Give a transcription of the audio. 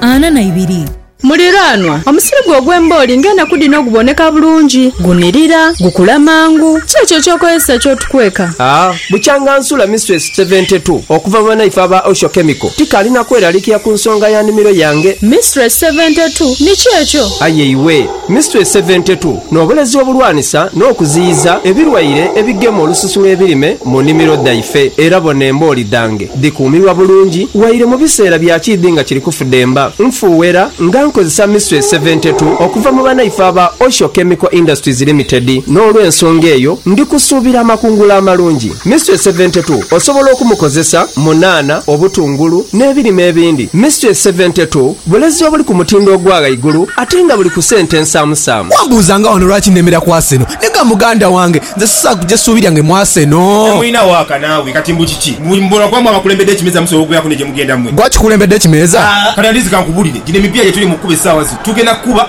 ana na ibiri. Muliraanwa, omusiri gwo ogw'embooli ng'enaku dhino oguboneka bulungi, gunirira, gukula mangu, ki ekyo eky'okozesa ky'otukweka? Aa, bukyanga nsula Mistress Seventy Two, okuva mu banaife aba Osho Chemical, tikaali na kweralikira ku nsonga ya nimiro yange. Mistress Seventy Two, ni ki ekyo? Aye iwe! Mystery Seventy Two n'obulezi obulwanisa n'okuziyiza ebilwaire ebigema olususu lw'ebirime mu nimiro dhaife. Era bona embooli dhange dhikuumirwa bulungi waire mu biseera bya kiidhi nga kiri kufudemba. Nfuuwera nga nkozesa Mystery Seventy Two okuva mu banaife aba Osho Chemical Industries Limited n'olw'ensonga eyo ndi kusuubira amakungula amalungi. Mystery Seventy Two osobola okumukozesa mu nhanha, obutungulu n'ebirime ebindi. Mystery Seventy Two. Bulezi obuli ku mutindo ogwa ghaigulu ate nga buli ku sente ensaamusaamu. Wambuuza nga wano lwaki nemera ku Arsenal. Nega muganda wange, nze sisaakuja ssuubi lyange mu Arsenal. Nawe olina waaka naawe kati mbu kiki? Mbu bona kuba mwe abakulembedde ekimeeza musobola okubeeraku ne gye mugenda mwe. Gwe akikulembedde ekimeeza? Haa kati at least kankubulire, gino emipiira gye tuli mu kukuba essaawa zino tugenda kukuba.